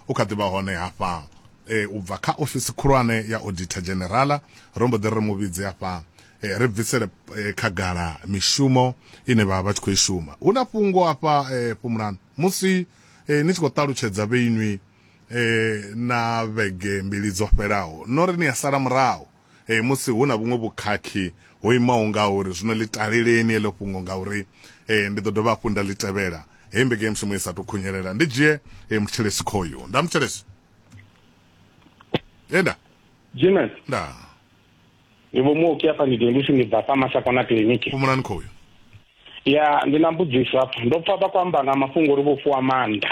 u kha ḓi vha hone hafha e, u bva kha ofisi khulwane ya auditor generala ro mbo ḓi ri mu vhidze hafha e, ri bvisele e, khagala mishumo ine vha vha tshi khou i shuma hu na fhungo hafha e, fhumulani musi e, ni tshi khou ṱalutshedza vheinwi e, na vhege mbili dzo fhelaho no ri ni a sala murahu e, musi hu na vhuṅwe vhukhakhi ho imaho nga uri zwino ḽi taleleni eḽo fhungo nga uri e, ndi ḓo dovha hafhu nda ḽi tevhela hei mbekanyamushumo i sa tou khunyelela ndi dzhie e, muthelesi khoyu nda muthelesi enda jimen nda ndi vho muoki afha ndi dengisi ndi bva fha mashakona kiliniki fhumulani khoyu ya ndi na mbudziso hafha ndo pfa vha kwamba nga mafhungo uri vho fuwa maanḓa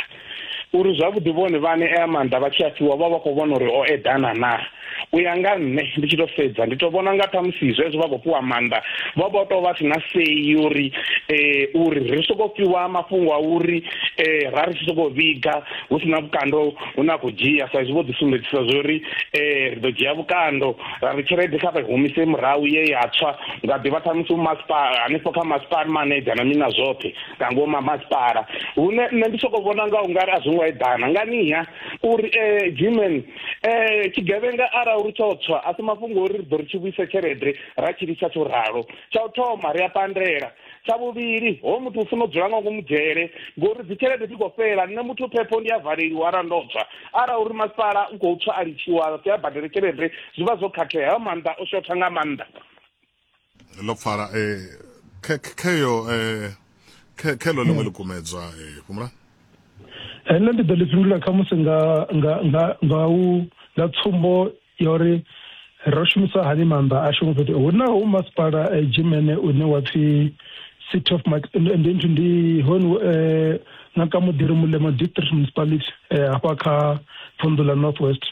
uri zwavhuḓi vhone vhane ea maanḓa vha tshi a fhiwa vha vha khou vhona uri o eḓana na u ya nga nṋe ndi tshi to sedza ndi to vhona nga ṱhamusi zwezwo vha khou fhiwa maanḓa vha vha to vha si na sei uri um uri ri soko fhiwa mafhungo a uri um ra ri tshi soko vhiga hu si na vhukando hu na khou dzhia sa izwi vho ḓi sumbedzisa zwa uri um ri ḓo dzhia vhukando ra ri tshelede kha vha humise murahu ye ya tswa nga ḓivha khamusi masipala hanefho kha masipala maneja na mina zwoṱhe nga ngomu masipala hune nṋe ndi soko vhona nga ungari a zwi ngo eḓana nganiha uri um gmen um eh, tshigevhenga arali ri tsho tswa a si mafhungo uri ri ḓo ri tshi vhuise tshelede ra tshi lisa tsho ralo tsha u thoma ri a pandela tsha vhuvhili ho muthu u funa u dzula nga ngomu dzhele ngori dzi tshelede dzi khou fhela nṋe muthu phepho ndi a valeliwa ara ndo tswa ara uri masipala u khou tswa a litshiwa a badele tshelede zwi vha zwo khakhea hayo maanḓa o shotha nga maanḓa ḽo pfala eh, kheyo eh, khelo ḽiṅwe ḽi kumedzwa eh, fhumula nṋe ndi ḓo ḽi fhindula khamusi nga nga nga nga u nga tsumbo ya uri ro shumisa hani maanḓa ashu ngo fhethu hu na hu masipala eh, jimene une wa pfi city of Mak- ndi ndi- ndi- ndi hone eh, na ka mudiri mulemo district municipality eh, hafha kha vunḓu ḽa north west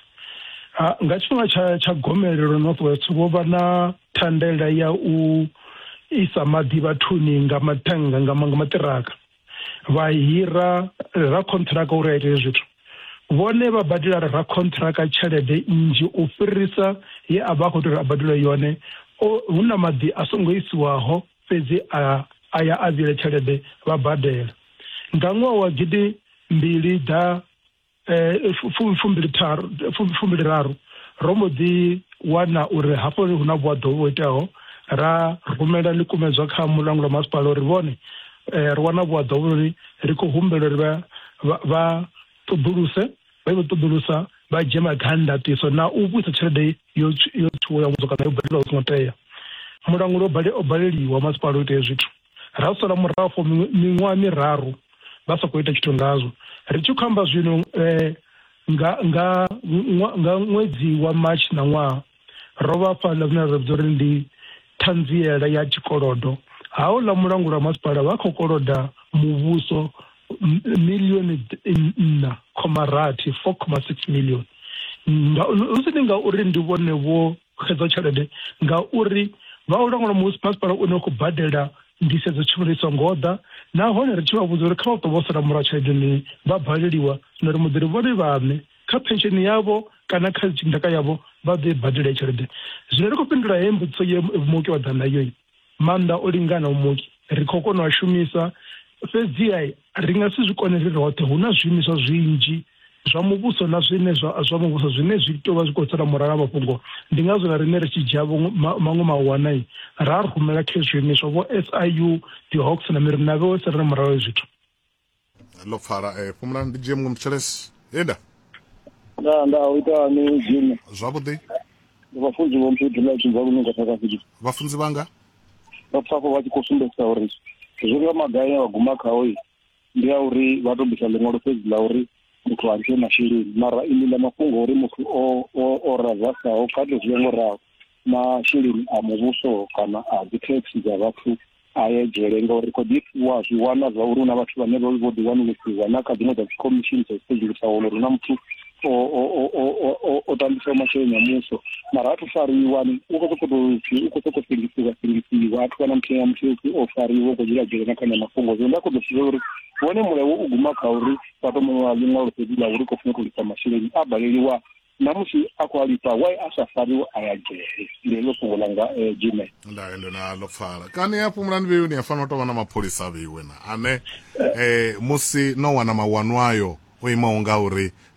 Ha, nga tshifhinga tsha tsha gomelelo north west vho vha na thandela ya u isa maḓi vhathuni nga mathanga nga ma- nga maṱiraka vha hira ra contract uri a ite zwithu vhone vha badela ra contract tshelede nnzhi u fhirisa ye a vha a khou tea uri a badele yone hu na maḓi a songo isiwaho fhedzi a a ya a vhile tshelede vha badela nga ṅwaha wa gidi mbili ḓa eh, fumbiliraru ro mbo ḓi wana uri hafho hu na vhuaḓo vho iteaho ra rumela ḽikumedzwa kha mulanguli wa masipala uri vhone eh, ri wana vhuaḓo vhuri ri khou humbela uri vha ṱoḓuluse vha i vho ṱoḓulusa vha dzhie magandatiso na u vhuisa tshelede yo tshuwo ya muthu kana yo badeliwa u songo tea mulanguli o baleliwa masipala u itea zwithu ra sala murahu for miṅwaha miraru vha sa khou ita tshithu ngazwo ri tshi khou amba zwino um nga nga nga ṅwedzi wa march na ṅwaha ro vha fha ḽa zwine ra vhidza uri ndi ṱhanziela ya tshikolodo haho ḽa mulango lwa masipala vha khou koloda muvhuso milioni nṋa khoma rathi four khoma six million hu si ndi ngauri ndi vhone vho xedzo tshelede ngauri vha u langula musi masipala u ne khou badela ndisedzo tshivhalo i songo ḓa nahone ri tshi vha vhudza uri kha vha ṱo vho sala murahu tshelede ni vha baleliwa na ri muḓiri vhone vhaṋe kha pensheni yavho kana kha ndaka yavho vha ḓo i badela tshelede zwino ri khou fhindula he mbudziso ye muoki wa ḓa nayo maanḓa o linganaho muki ri khou kona u a shumisa fhedziha ri nga si zwi kone ri roṱhe hu na zwiimiswa zwinzhi zwa muvhuso na zwine zwa zwa muvhuso zwine zwi tou vha zwi khou sala murahu na mafhungo ndi ngazwo na riṋe ri tshi dzhia maṅwe mawana ra rumela kha zwiimiswa vho SIU dzi hawks na miri na vhe wese ri na murahu zwithu ḽo pfala eh, fhumula ndi dzhie muṅwe mtshelesi enda nda nda u ita ni dzhimi zwavhuḓi ndi vhafunzi vho mphi dula tshi zwa lunga tsaka fiki vhafunzi vhanga vha pfafo vha tshi khou sumbedzisa uri zwi nga magai ya vhaguma khao yi ndi ya uri vha to bvisa ḽiṅwalo fhedzi ḽa uri muthu a ntshe masheleni mara iḽi ḽa mafhungo uri muthu o o o razasaho kha to zwi ngo raho masheleni a muvhuso kana a dzi taxi dza vhathu a ye dzhele ngauri ri khou ḓi wa zwi wana zwa uri hu na vhathu vhane vho vho ḓiwanulusiwa na kha dziṅwe dza dzikhomishini dza sedzulusa wana uri na muthu o tambisa masheleni a muso mara a thu fariwa u khou sokou tou pfi u khou sokou sengisiwa sengisiwa a thu wana muthu ya muthu upfi o fariwa u khou dzula dzhele na khanya mafhungo zwino nda khou ḓo pfisa uri wone mulayo u guma kha uri vha to muṅwe wa ḽiṅwalo fhedzi ḽa uri khou funa u tou lisa masheleni a baleliwa na musi a khou alifha why a sa fariwe a ya dzhele ndi heḽo fhungo langa eh, jime ndayo ndo na ḽo pfala kani ya fhumulani vheiwe ni ya fanela u tou vha na mapholisa a vheiwe na ane eh, musi no wana mawanwayo o imaho nga uri